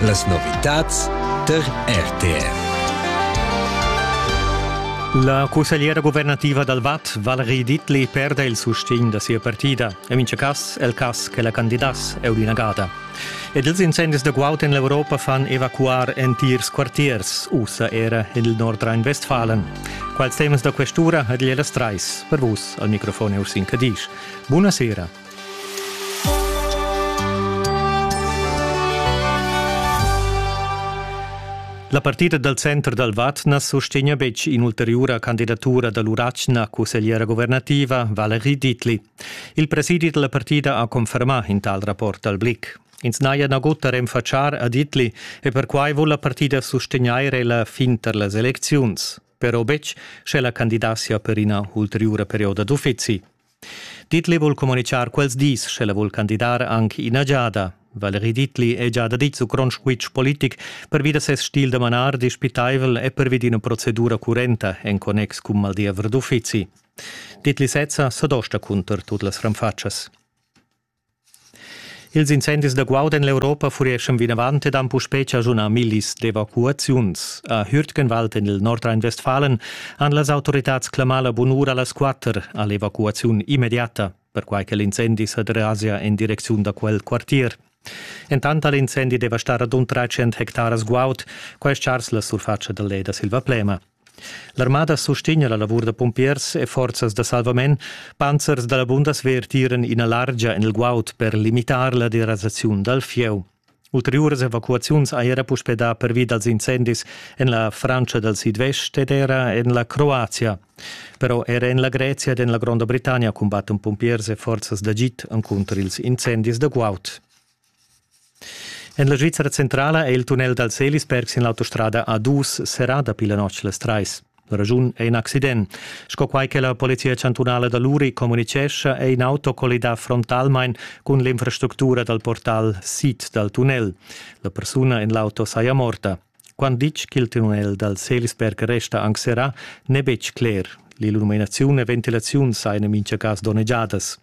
Las novitads tar RTR. La cussegliera guvernativa dal Vad, Valerie Dittli, perda il sustegn da sia partida. En mintga cas è il cas che la candidass è inagada. Ed ils incendis da guaud en l'Europa fan evacuar entirs quartiers, ussa era en il Nordrhein-Westfalen. Quals temas da questura ha Diela Streis per vus al microfon Ursin Cadisch. Buonasera La partida dal center dal Vad na sustegna betg in'ulteriura candidatura da l'Urachna cussegliera guvernativa Valerie Dietli. Il presidi da la partida ha confermà in tal rapport al Blick. Ins n'haja nagut da renfatschar a Dietli e perquai vul la partida sustegnair la fin tar las elecziuns, però betg sche la candidatia per ina ulteriura perioda d'uffizi. Dietli vul communichar quels dis, sche la vul candidar anc ina giada. Valerie Dietli è già daditg su grond squitsch politic pervi da ses stil da manar dispitaivel e pervi d'ina procedura currenta en connex cun maldiever d'uffizi. Dietli sezza s'adosta cunter tut las ranfatschas. Ils incendis da guaud en l'Europa fureschan vinavant ed han puspè chaschunà millis d'evacuaziuns. A Hürtgenwald en il Nordrhein-Westfalen han las autoritads clamà la bunura a las quatter a l'evacuaziun immediata, perquai che l'incendi sa derasa en direcziun da quel quartier. Entant ha l'incendi devastà radund 300 hectaras guaud, quai è chars la surfatscha dal led da Silvaplema. L'armada sustegna la lavur da pumpiers e forzas da salvament. Panzers da la Bundeswehr tiran ina largia en il guaud per limitar la derasaziun dal fieu. Ulteriuras evacuaziuns ha era puspè dà pervi dals incendis en la Francia dal sidvest ed era en la Croazia. Però era en la Grezia ed en la Gronda Britannia cumbattan pumpiers e forzas d'agid encunter ils incendis da guaud. En la Svizzera centrala è il tunnel dal Selisberg sin l'autostrada A2 serrà dapi la notg las trais. La raschun è in accident. Sco quai che la Polizia chantunala da Luri communitgescha, è in auto collidà frontalmain cun l'infrastructura dal portal sid dal tunnel. La persuna en l'auto saja morta. Quant ditg ch'il tunnel dal Selisberg resta anc serrà n'è betg cler. L'illuminaziun e ventilaziun sajan en mintga cas donnegiadas.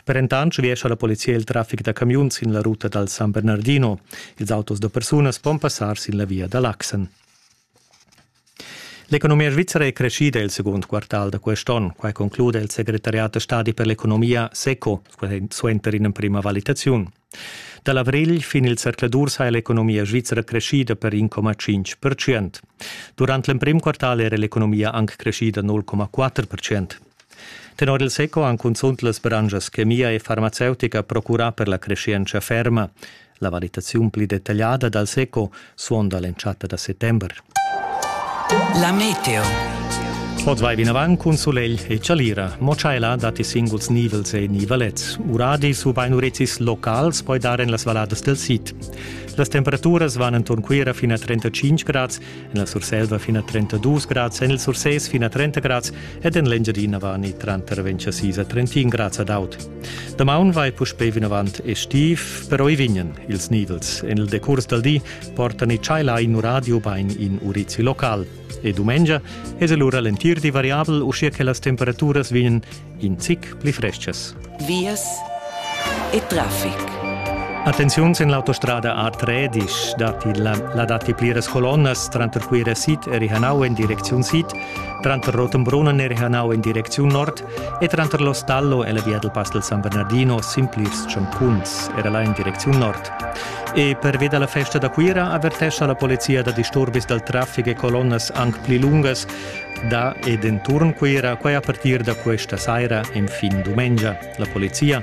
Per entant schliescha la polizia il traffic da camiuns sin la ruta dal San Bernardino. Ils autos da persunas pon passar sin la via da l'Axen. L'economia svizra è creschida il segund quartal da quest onn. Quai conclude il segretariat da stadi per l'economia SECO suenter ina prima valitaziun. Da l'avrigl fin il zercladur sa l'economia svizra creschida per 1,5%. Durant l'emprim quartal era l'economia anc creschida 0,4%. Tenor il SECO han cunzunt las branschas chemia e farmaceutica procurà per la creschientscha ferma. La valitaziun pli detagliada dal SECO suonda l'entschatta da settember. La meteo. Oz vai vinavant cun sulegl e chalira, mo tschaiला datti singuls nivels e nivalets. Uradis ubain urezis locals poi dar en las valladas del sid. Las temperaturas van enturn Cuira fin a 35 grads, en la Surselva fin a 32 grads, en il Sursès fin a 30 grads ed en l'Engiadina van tranter 26 a 31 grads ad aut. Damaun vai puspei vinavant e stiv, però i vignan ils nidels. En il decurs dal di portan i tschaila in radio bain in urizi local. E dumengia es el ura l'entir di variabel, uschia che las temperaturas vignan in zic pli frestgas. Vias e traffic. Attenziuns en l'autostrada A3 datti la, la datti pliras colonnas tranter Cuira Sid e Rihanau en direcziun sid, tranter Rotenbrunnen e Rihanau en direcziun nord e tranter l'Ostallo e la via dal Pass del San Bernardino sin plirs tschancuns era là in direcziun nord. E pervi da la festa da Cuira avertescha la polizia da disturbis dal traffic e colonnas anc pli lungas da ed enturn Cuira, quai a partir da questa saira en fin dumengia. La polizia